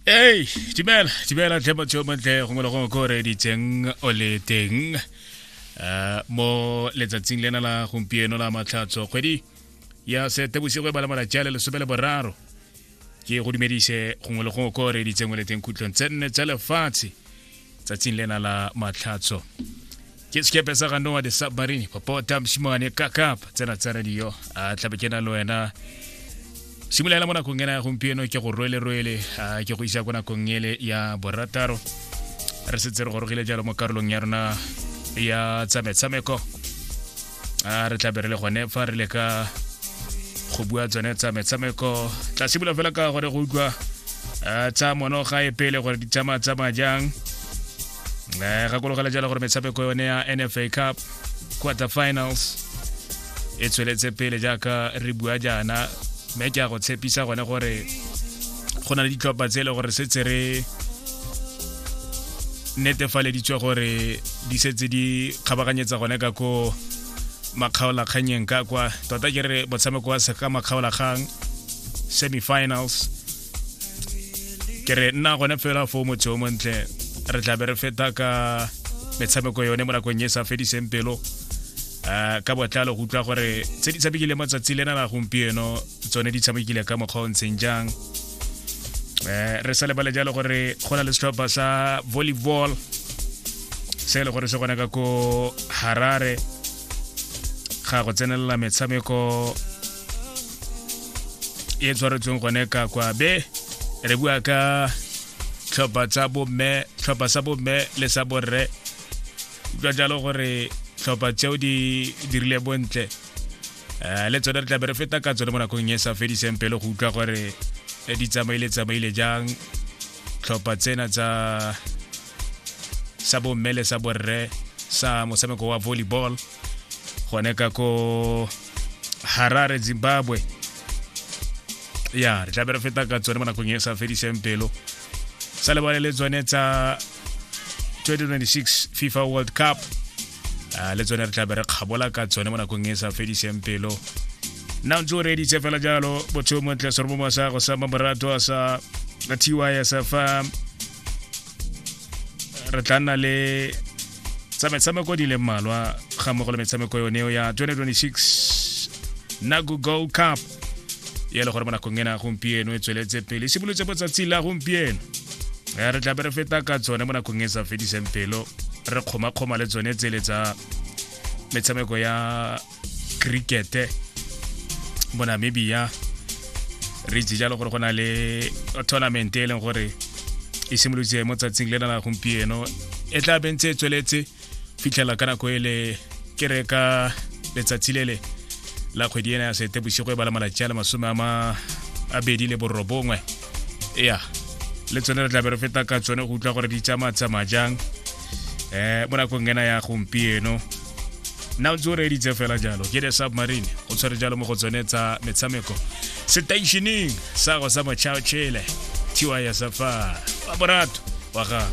ei dumela dumela tlhe motho yo montle gongwe le gongwe ko o reeditseng o le teng um mo letsatsing lena la gompieno la matlhatso kgwedi ya setebosigo e bala malatsi a le lesome le boraro ke go dumedise gongwe le gongwe ko o reeditseng o le teng khutlong tse nne tsa lefatshe tsatsing lena la matlhatso ke sekepe sa ga noa de submarine popota mosimane kakap tsena tsa radio a tlabe ke na le wena simolola mo nakong ena ya gompieno ke go rwele rwele ke go isa ko nakong ele ya borataro re setse re gorogile jalo mo karolong ya rona ya tsa metshameko a re tla be re le gone fa re le ka go bua tsone tsa metshameko tla simolola fela ka gore go utlwa tsa mono ga e pele gore di tsamaya tsamaya jang um gakologela jalo gore metshameko yone ya nfa cup quarter finals e tsweletse pele jaaka re bua jaana mme ke a go tshepisa gone gore go na le ditlhopha tse e le gore setse re netefaleditswe gore di setse di kgabaganyetsa gone ka ko makgaolakganyeng ka kwa tota ke re motshameko wa seka makgaolakgang semifinals ke re nna gone fela fo motse o montle re tlabe re feta ka metshameko yone mo nakong e sa fediseng pelo um ka botlalo go utlwa gore tse di tshamekile matsatsi lena la gompieno tsone di tshamekile ka mokgwa o ntseng jang eh re sa lebale jalo gore go na le setlhopha sa volleyball se e le gore se gona ka ko harare ga go tsenelela metshameko e tshwaretsweng gone ka kwa be re bua ka tlhopha tsa bomme tlhopha sa bomme le sa borre utlwa jalo gore tlhopha tseo di dirile bontle um le tsone re tlabe re feta ka tsone mo nakong e sa fediseng pele go utlwa gore eh, di tsamaile tsamaile jang tlhopha tsena tsa sa bomme le sa borre sa motshameko wa volleyball gone ka ko harare zimbabwe ya re tlabe re feta ka tsone mo nakong e sa fediseng pelo sa lebale le tsone tsa 2026 fifa world cup uh, le tsone re tla be re kgabola ka tsone mo nakong e sa fediseng pelo nna ntse o reeditse fela jalo botsheo montle sorobomo sa go sa mamorato a sa la ty ya sa fa re tla nna le tsa metshameko di leng mmalwa ga mmogo le metshameko yone ya 2026 nago gold cup ya le gore mo nakong ena gompieno e tsweletse pele e simolotse mo tsatsi la gompieno ya re tlabe re feta ka tsone mo nakong e sa fediseng pelo re kgomakgoma le tsone tsele tsa metshameko ya crickete mo namibia re itse jalo gore go na le tournament e leng gore e simolotse mo tsatsing le na la gompieno e tla bentse e tsweletse fitlhela ka nako ele ke re ka letsatsi lele la kgwedi ena ya sete bosigo e bala malatsi a le masome a ma a bedi le borobongwe ya le tsone re tlabe re feta ka tsone go utlwa gore di tsamaya tsamaya jang um mo nakong ena ya gompieno nna o ntse o reeditse fela jalo ke the submarine go tshwere jalo mo go tsone tsa metshameko setaišeneng sa go sa mochao chele tiwa ya safa wa borato wa gago